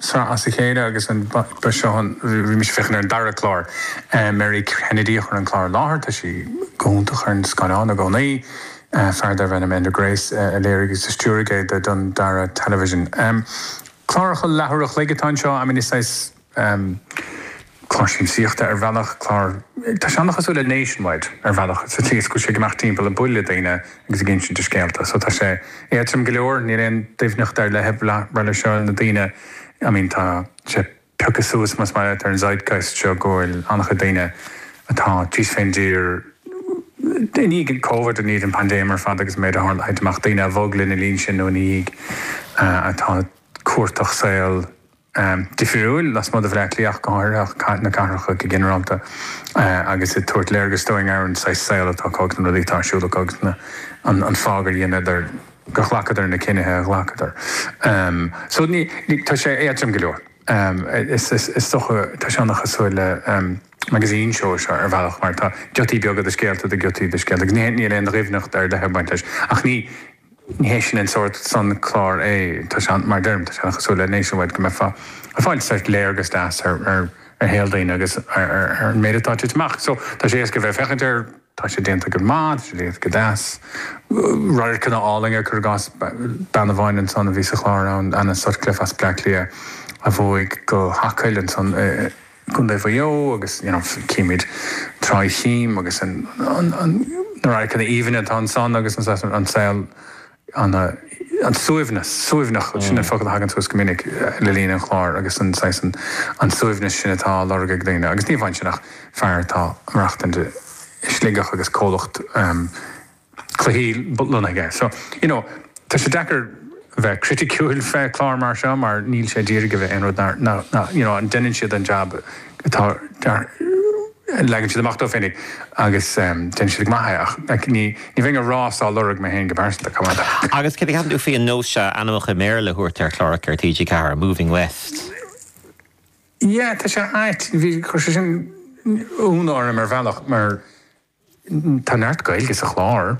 seo as a chéile agus ansan bhí mise ag féachaint ar an dara clár Mary Kennedy a chuir an clár i láthair tá sí go hiontach ar an scáileán i gcónaí fear darbh ainm Enda Grace a léirigh agus a stiúraigh é do Dundara Television cláracha leathuair a chloig atá anseo I mean is saghas clár siamsaíochta ar bhealach, clár, tá sé ana-chosúil le Nationwide ar bhealach sa tslí is go bhfuil sé ag imeacht timpeall ag bualadh le daoine agus ag insint a scéalta so tá sé éadtrom go leor, níl aon doimhneacht ar leith ag baint leis seo, na daoine, I mean tá sé pioctha suas más maith leat ar an zeitgeist seo go bhfuil an-chuid daoine atá thíos fén dtír i ndiaidh Covid, i ndiaidh an pandéim ar fad agus an méid a tharla, thit amach daoine a bhog lena linn sin nó ina dhiaidh atá ag cuartach saol. difriúil lasmuigh de Bhleá Cliath ach go háirithe, na cathracha go ginearálta agus ag tabhairt léargas dúinn ar an saghas saol atá acu agus na rudaí atá ar siúl acu agus an fáth gur dheineadar, gur ghlacadar na cinnithe a ghlacadar. So ní, tá sé éadtrom go leor. Is dócha, tá sé an-chosúil le magazine show ar bhealach mar tá giotaí beaga de scéalta, de ghiotaí de scéalta agus níl aon doimhneacht ar leith ag baint leis ach ní, Ní hé sin an sórt san clár é. Tá sé, mar a deirim, tá sé an-chosúil le Nationwide go mbeifeá ag fáil saghas léargas deas ar shaol daoine agus ar an méid atá titithe amach. So, tá sé éasca a bheith ag féachaint air, tá sé déanta go maith, tá sé déanta go deas. Radharcanna álainne, cur i gcás, bean amháin ansan a bhí sa chlár ann, Anna Sutcliffe as Bleá Cliath a bhog go hAcaill ansan i, gContae Mhaigh Eo agus you know címid Trá Chím agus an na radharcanna aoibhinne atá ansan agus an saghas an saol an an suaimhneas suaimhneach sin an focal a thagann suas go minic le linn an chláir agus an saghas an an suaimhneas sin atá á lorg ag daoine agus ní amháin sin ach fear atá ag maireachtaint i Sligeach agus comhlacht cluichí bunaithe aige. So, you know, tá sé deacair bheith criticiúil fé chlár mar seo mar níl sé ag d'iarraidh a bheith aon rud nar, nar, you know, an deineann siad an jab atá dear, leagann siad amach dóibh féinig agus em deineann siad go maith é ach like ní, ní bheinn ag rás á lorg mé féin go pearsanta, an dtuigeann tú? Agus céard a cheapann tú faoi an nós seo ainmneacha i mBéarla a thabhairt ar chláracha ar TG4, Moving West? Yeah, tá sé ait, bhí, chuir sé sin ionadh orm ar bhealach mar, Tá neart Gaeilge sa chlár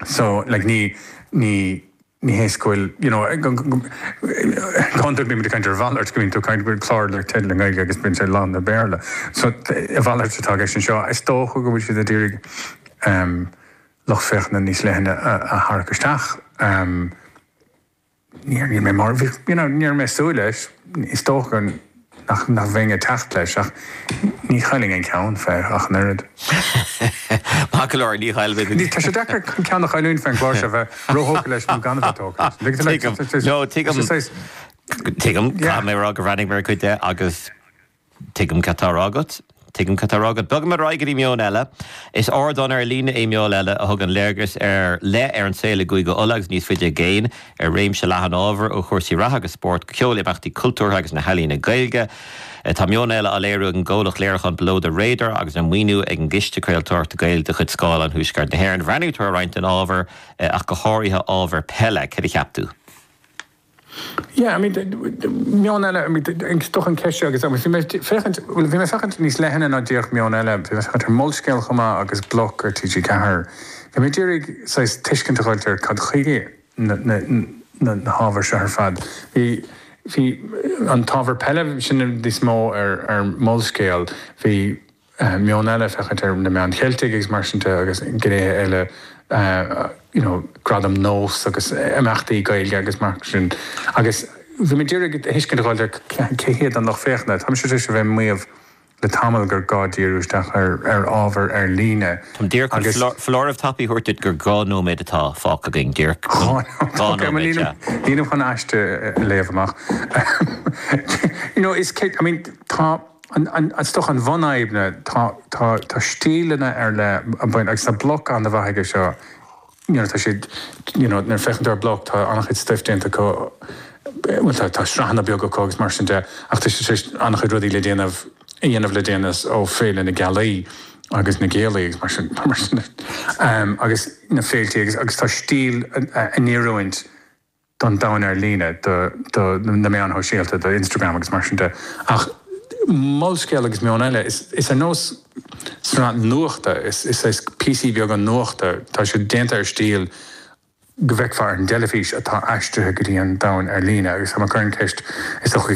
so like ní ní ní hé is go bhfuil you know go hiondúil bímid ag caint ar a mhalairt go mbíonn tú ag caint go bhfuil clár le teideal i nGaeilge agus bíonn sé lán le Béarla so a mhalairt atá i gceist anseo is dócha go bhfuil siad ag d'iarraidh lucht féachana níos leithne a tharrac isteach. Níl mé mar, you know, ní raibh mé ag súil leis. Is dócha nach mbeinn ag teacht leis ach ní chaillfinn an ceann faoi ach an oiread. Maith go leor, ní chaillfidh tú. Tá sé deacair an ceann a chailliúint faoin gclár seo bheith róthógtha leis nó gan a bheith tógtha leis. Tuigim, no, tuigim, tuigim, caithfidh mé a rá go bhreathnaigh mé ar chuid de agus Tuigim cad tá a rá agat. Tuigim cad tá á rá agat. Bogfaimid ar aghaidh go dtí Meon Eile. Is ardán ar líne é Meon Eile a thugann léargas ar leith ar an saol i gCúige Uladh agus níos faide i gcéin, ar réimse leathan ábhar, ó chúrsaí reatha agus spóirt go ceol, imeachtaí cultúrtha agus na healaíona Gaeilge. Tá Meon Eile á léiriú ag an gcomhlacht léiriúcháin Below the Radar agus á mhaoiniú ag an gCiste Craoltóireachta Gaeilge de chuid Scáileán Thuaisceart na hÉireann. Bhreathnaigh tú ar roinnt den ábhar, ach go háirithe ábhar peile. Céard a cheap tú? Meon eile, is dócha an cheist seo agus, bhí mé ag féachaint, bhuel bhí mé ag féachaint níos leithne ná díreach Meon Eile, bhí mé ag féachaint ar Molscéal chomh maith agus bloc ar TG4. Bhí mé ag iarraidh saghas tuiscint a thabhairt ar cad chuige na hábhair seo ar fad. Bhí, bhí an t-ábhar peile, sin níos mó ar Molscéal, bhí, meon eile, féachaint ar na meáin Cheiltigh agus mar sin de agus gnéithe eile you know gradaim nós agus imeachtaí Gaeilge agus mar sin agus bhí mé ag iarraidh tuiscint a fháil ar cé hiad an lucht féachana. Tá mise tar éis a bheith ag maíomh le tamall gur gá díriú isteach ar ábhar ar líne Táim díreach chun agus. foláireamh tapaidh a thabhairt duit gur dhá nóiméad atá fágtha againn. Díreach Dhá chun. nóiméad? Dhá Ok, bhuel nóiméad, sea. nílim, nílim chun aiste a léamh amach. you know is cé, I mean tá. Is dócha an bhunfhadhb ná tá stíleanna ar leith ann agus tá bloc an-mhaith aige seo. Nuair atá siad, you know, nuair a féachann tú ar bloc tá an-chuid stuif déanta acu, bhuel tá tá sraitheanna beaga acu agus mar sin de ach tá siad tar éis an-chuid rudaí le déanamh, a dhéanamh le déanaí ó Féile na Gealaí agus na Gaeilge agus mar sin mar sin de. Agus na féiltí agus tá stíl in oiriúint. don domhan ar líne, do na meáin shóisialta, do Instagram agus mar sin de. Ach Molscéal agus Meon Eile, is ar nós sraith nuachta, is saghas píosaí beaga nuachta, tá siad déanta ar stíl go bhfeicfeá ar an teilifís atá aistrithe go dtí an domhan ar líne agus tá mé ag cur an cheist, is dócha go